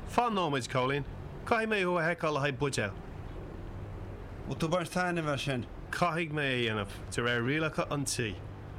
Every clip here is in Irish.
Fan nóiméad Cóilín. Caithfidh mé thú a sheiceáil le haghaidh buidéil. Bhfuil tú baint taitnimh as sin? Caithfidh mé é a dhéanamh, de réir rialacha an tí.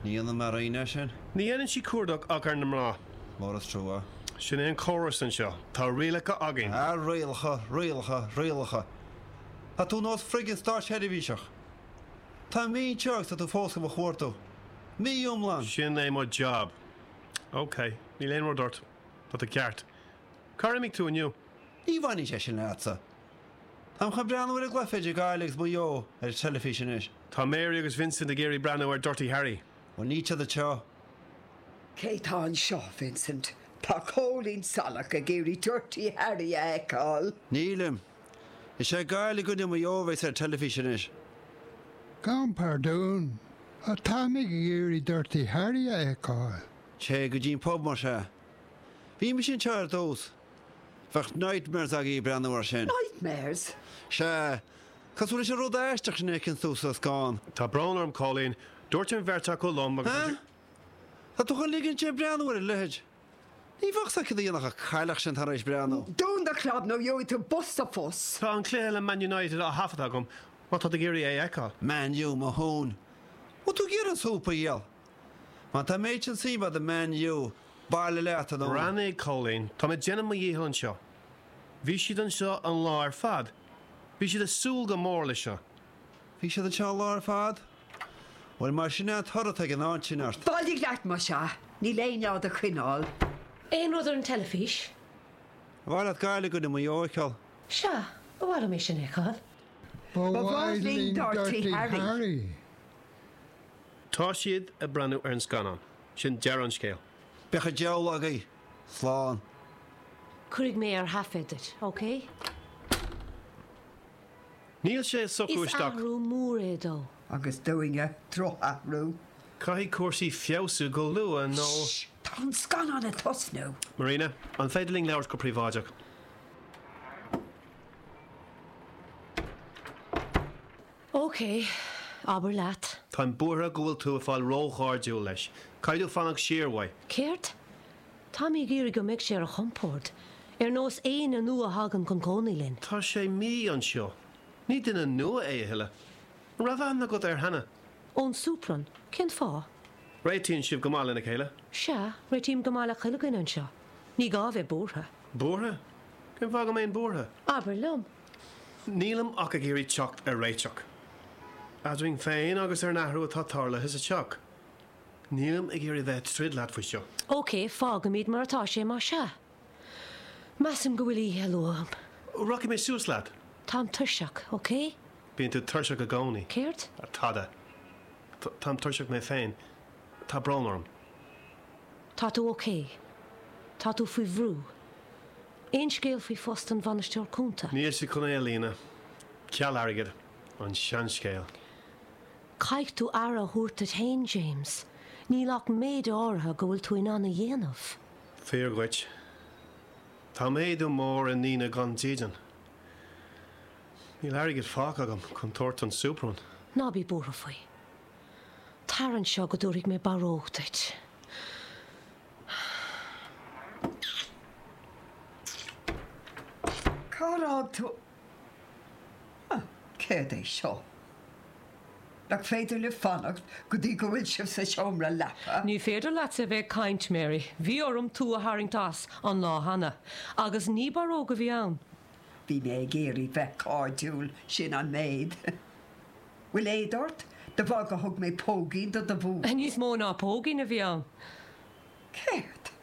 Ní dhéanann Marina é sin. Ní dhéanann sí cuardach ach ar na mná. Mór is trua. Sin é an córas anseo. Tá rialacha againn. Ah, rialacha, rialacha, rialacha. Tá tú nós friggin státseirbhíseach. Tá mí imithe agus tá tú fós do mo chuartú. Mí iomlán! Sin é mo jab. OK. Níl aon rud ort. Tá tú ceart. Cár imigh tú inniu? Ní bhaineann sé sin leatsa. Táim chun breathnú ar an gcluiche idir Gaillimh agus Maigh Eo ar an teilifís anois. Tá Mary agus Vincent ag iarraidh breathnú ar Dirty Harry. Bhuel, ní tionad seo. Cé tá anseo, Vincent? Tá Cóilín Salach ag iarraidh Dirty Harry a fheiceáil. Nílim. Is é Gaillimh i gcoinne Maigh Eo a bheas ar teilifís anois. Gabhaim pardún, ach táimid ag iarraidh Dirty Harry a fheiceáil. Téigh go dtí an pub más ea. Bhí mise anseo ar dtús. Bheadh nightmares agaibh breathnú air sin. Nightmares? Sea. Cosúil leis an rud aisteach sin a chíonn tú sa scáthán. Tá brón orm Cóilín. Dúirt an bheirt acu liom agus. Huh? Tá tú chun ligint di breathnú ar a leithéid? Ní bheadh a fhios agat céard a dhéanfadh an chailleach sin tar éis breathnú. Dún do chlab nó gheobhaidh tú bos sa phus. Tá an cluiche le Man United á thaifeadadh agam má tá tú ag iarraidh é a fheiceáil. Man U, mo thóin! Bhfuil tú ag iarraidh an súp a dhíol? Má tá an méid sin suim agat i Man U, bailigh leat anonn. Roghnaigh Cóilín, Táim ag déanamh mo dhícheall anseo. Bhí siad anseo an lá ar fad. Bhí siad ag súil go mór leis seo. Bhí siad anseo an lá ar fad? Bhuel mar sin é an toradh atá ag an áit sin ort. Bailigh leat más ea! Níl éinne á do choinneáil. Aon rud ar an teilifís? Ar mhaith leat Gaillimh i gcoinne Mhaigh Eo a fheiceáil? Sea, ba mhaith liom é sin a fheiceáil. Ba mhaith linn Dirty Harry. Tá siad ag breathnú ar an scannán. Sin deireadh an scéil. Bíodh an diabhal agaibh! Slán. Cuirfidh mé ar thaifead duit, OK? Níl sé ag socrú isteach. Is athrú mór é dó. Agus dúinne. Drochathrú. Caithfidh cúrsaí feabhsú go luath nó. Sh! Tá an scannán ag tosnú! Marina, an féidir linn labhairt go príobháideach? OK, abair leat. Táim buartha go bhfuil tú ag fáil róchairdiúil leis. Caithfidh tú fanacht siar uaidh. Céard? Tá mé ag iarraidh go mbeidh sé ar a chompórd, ar nós éinne nua a thagann chun cónaí linn. Tá sé mí anseo. Ní duine nua é a thuilleadh. An raibh aithne agat air cheana? Ón soup run. Cén fáth? Réitíonn sibh go maith lena chéile? Sea, réitím go maith le chuile dhuine anseo. Ní gá a bheith buartha. Buartha? Cén fáth go mbeinn buartha? Abair liom. Nílim ach ag iarraidh teacht ar réiteach. Eadrainn féin agus ar an athrú atá tarlaithe sa teach. Nílim ag iarraidh bheith ag troid leat faoi seo. OK, fágfaimid mar atá sé má sea. Measaim go bhfuil oíche luath uaim. Rachaidh mé suas leat. Táim tuirseach, OK? Bíonn tú tuirseach i gcónaí. Céard? Tada. Táim tuirseach mé féin. Tá brón orm. Tá tú OK. Tá tú faoi bhrú. Aon scéal faoi phost an Bhainisteora Chúnta? Níl siad chun é a líonadh. Ceal airgid. An seanscéal. Caithfidh tú aire a thabhairt duit fhéin, James. Níl ach méid áirithe go bhfuil tú in ann a dhéanamh. Fíor dhuit. Tá méadú mór ar dhaoine gan dídean. Níl airgead fágtha agam chun tabhairt don Superman. Ná bí buartha faoi. Tar anseo go dtabharfaidh mé barróg duit. Huh! Céard é seo? Nach féidir libh fanacht go dtí go bhfuil sibh sa seomra leapa? Ní féidir leatsa a bheith ag caint, Mary. Bhí orm tú a tharraingt as, an lá cheana. Agus ní barróg a bhí ann. Bhí mé ag iarraidh bheith cairdiúil, sin an méid. Bhfuil éad ort? De bharr gur thug mé póigín do do bhean? Níos mó ná póigín a bhí ann. Céard?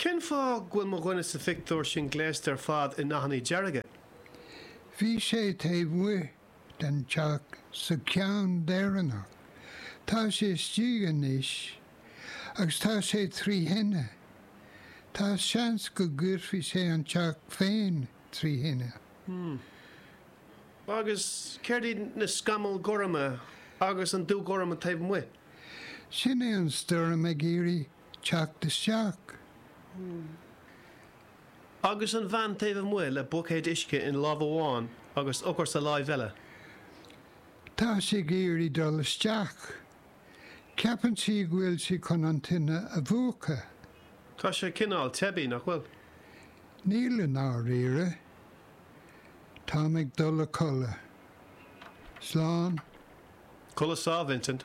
Cén fáth go bhfuil mo dhuine sa phictiúr sin gléasta ar fad i ndathanna dearga? Bhí sé taobh amuigh den teach sa cheann deireanach. Tá sé istigh anois agus tá sé trí thine. Tá seans go gcuirfidh sé an teach féin trí thine. Agus céard iad na scamaill ghorma agus an dúghorm taobh amuigh? Sin é an stoirm ag iarraidh teacht isteach. Agus an bhean taobh amuigh le buicéad uisce i láimh amháin agus eochair sa láimh eile. Tá sí ag iarraidh dul isteach. Ceapann sí go bhfuil sí chun an tine a mhúchadh. Tá sé cineál teibí, nach bhfuil? Níl i ndáiríre. Táim ag dul a codladh. Slán. Codladh sámh, Vincent.